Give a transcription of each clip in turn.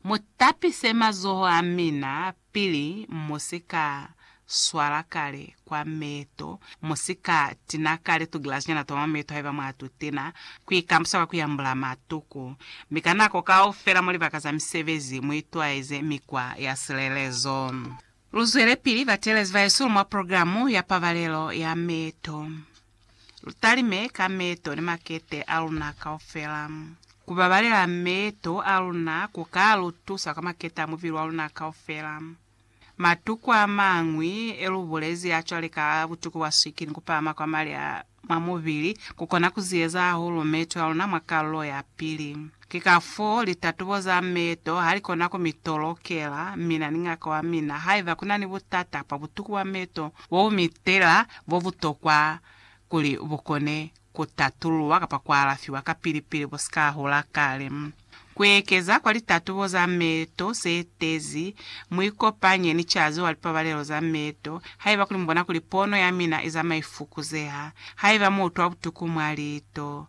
Mu tapise mazoho a mina pili mu si ka swala kale kwa meto, mu si ka tina kale tugilazinyana twa mwa meto haiba mwa tu tina, ku ikambusa kwa ku yambula matuku, mi ka nako kaufela mwa libaka za misebezi mu itwaeze mikwa ya silelezo. Luzwelepili batelezi baesulu mwa programo ya pabalelo ya meeto. Lutalime ka meeto ni makete aluna kaufela. Kubabalela meeto aluna kuka lutusa kwa makete a mubili waluna kaufela. Matuku amañwi elubulezi acwale ka butuku bwa swikili ni kupahama kwa mali a. mwa mubili ku kona ku ziyeza hahulu meeto a luna mwa kalulo ya pili. Ki ka foo litatubo za meeto ha li kona ku mi tolokela mina ni ngaka wa mina haiba ku na ni butata bwa butuku bwa meeto bo bu mitela bo bu tokwa kuli bu kone ku tatululwa kapa ku alafiwa kapili pili bu si ka hula kale. Kuekeza kwa litatubo za meeto seetezi, muikopanye ni cazi wa lipabalelo za meeto haiba kuli mubona kuli pono yamina izama ifukuzeha, haiba muutwa butuku mwa liito,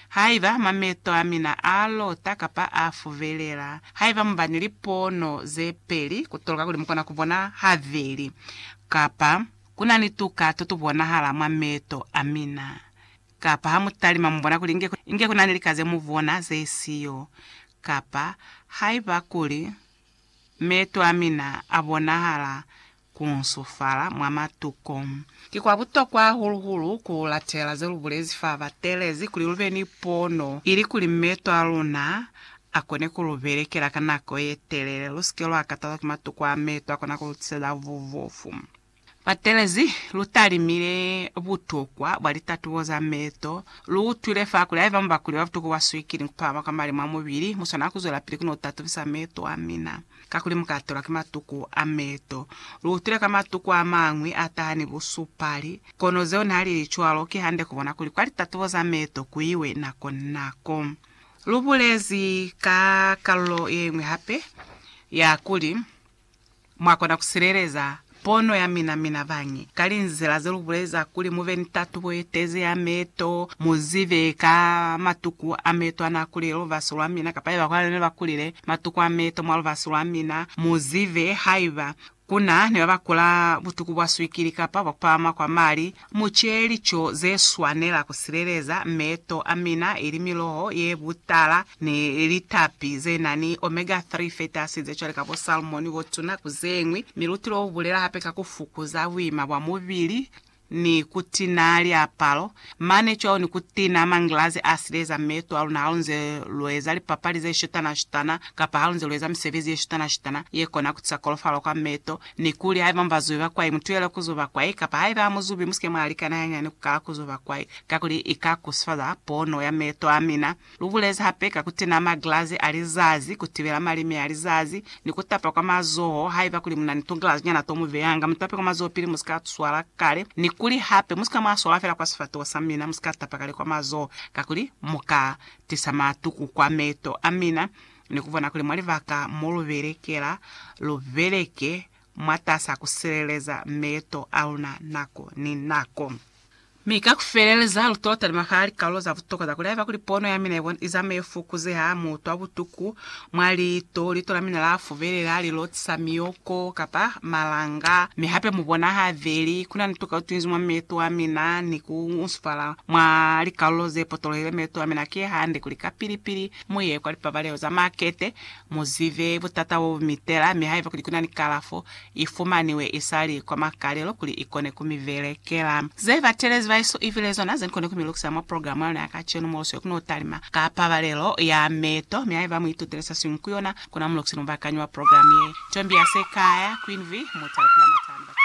haiba hama meeto amina aalota kapa aafuvelela, haiba muba ni lipono zepeli kutoloka kuli mukona kubona habeli, kapa kunani tuka totubonahala mwa meeto amina, Kapa ha mu talima mu bona kuli inge, inge ku na ni lika ze mu bona ze si yo. Kapa, haiba kuli, Meto a mina a bonahala ku nsufala mwa matuko. Ki kwa butokwa hahulu-hulu ku latela ze lu bulezi fa ba teelezi kuli lu be ni pono, ili kuli meto a luna a kone ku lu belekela ka nako ye telele, lu si ke lwa katazwa ki matuko a meto a kona ku lu tiseza bubofu. Batelezi, lu talimile butokwa bwa litatubo za meeto. Lu utwile fa kuli haiba mubakuli wa butuku bwa swikili ni kupahama kwa mali mwa mubili, mu swanela ku zwelapili ku no tatubisa meeto a mina, kakuli mu ka tolwa ki matuku a meeto. Lu utwile ka matuku a mañwi a taha ni busupali. Kono zeo nihalili cwalo, ki hande ku bona kuli kwa litatubo za meeto ku iwe nako ni nako. Lu bulezi ka kalulo ye ñwi hape, ya kuli, Mwa kona ku sileleza pono ya mina, mina bañi, ka linzila ze lu buleza kuli mu be ni tatubo ye tezi ya meto, mu zibe ka matuku a meto a na kulile lubasi lwa mina, kapa haiba ku na ni ba ne ba kulile matuku a meto mwa lubasi lwa mina, mu zibe haiba ku na ni ba ba kula butuku bwa swikili kapa bwa ku pahama kwa mali, Mu ce lico ze swanela ku sileleza meeto a mina, ili miloho ye butala ni litapi ze na ni omega 3 fatty acids ze cwale ka bo salmon, bo tuna, ku ze ñwi. Mi luti lo lu bulela hape ka ku fukuza buima bwa mubili ni ku tina liapalo, mane cwalo ni ku tina mangilazi a sileleza meeto a luna halunze lu eza lipapali ze shutana-shutana kapa halunze lu eza misebezi ye shutana-shutana ye kona ku tisa kolofalo kwa meeto. Nikuli haiba mubazube bakwai, mutuhele kuzo bakwai, kapa haiba hamuzubi, musike mwaalikana hanyani kukala kuzo bakwai, kakuli ika kusifaza pono ya meeto amina. Lubulezi hape ka kutina maglazi a lizazi, kutibela malimi a lizazi, ni kutapa kwa mazoho. Haiba kuli munani tuglazi nyana to mubeyanga, mutape kwa mazoho pili, musika tuswala kale. Nikuli hape, musika mwaswala fela kwa sifatoho samina, musika tapa kale kwa mazoho, kakuli muka tisa matuku kwa meeto amina. Ni ku bona kuli mwa libaka mo lu belekela, lu beleke mwatas'a ku sileleza meeto a luna nako ni nako. Mi ka ku feleleza, lu t'o talima fa likaulo za butokwa za kuli haiba kuli pono ya mina i zama i fokozeha, mu utwa butuku mwa liito, liito la mina la fubelela, li lotisa miyoko kapa malanga, mi hape mu bona ha veli. Ku na ni tukautwinzi mwa meeto a mina ni ku nsufala mwa likaulo ze potolohile. Meeto a mina ki hande kuli kapili-pili Mu ye kwa lipabalelo za makete, mu zibe butata bo bu mitela, mi haiba kuli ku na ni kalafo, i fumaniwe i sa li kwa makalelo kuli i kone ku mi belekela. Ze batelezi ba Yesu i bile zona ze kone ku mi lukisa mwa programa ya luna ya kacenu, mo sweli ku n'o talima ka pabalelo ya meto, mi haiba mu itutile se siñwi ku yona, ku na mulukisi ni mubakanyi wa programa ye. Tombiase Kaya, Queen Vee, mutu a ipula mwa Tshwane, Bakeni.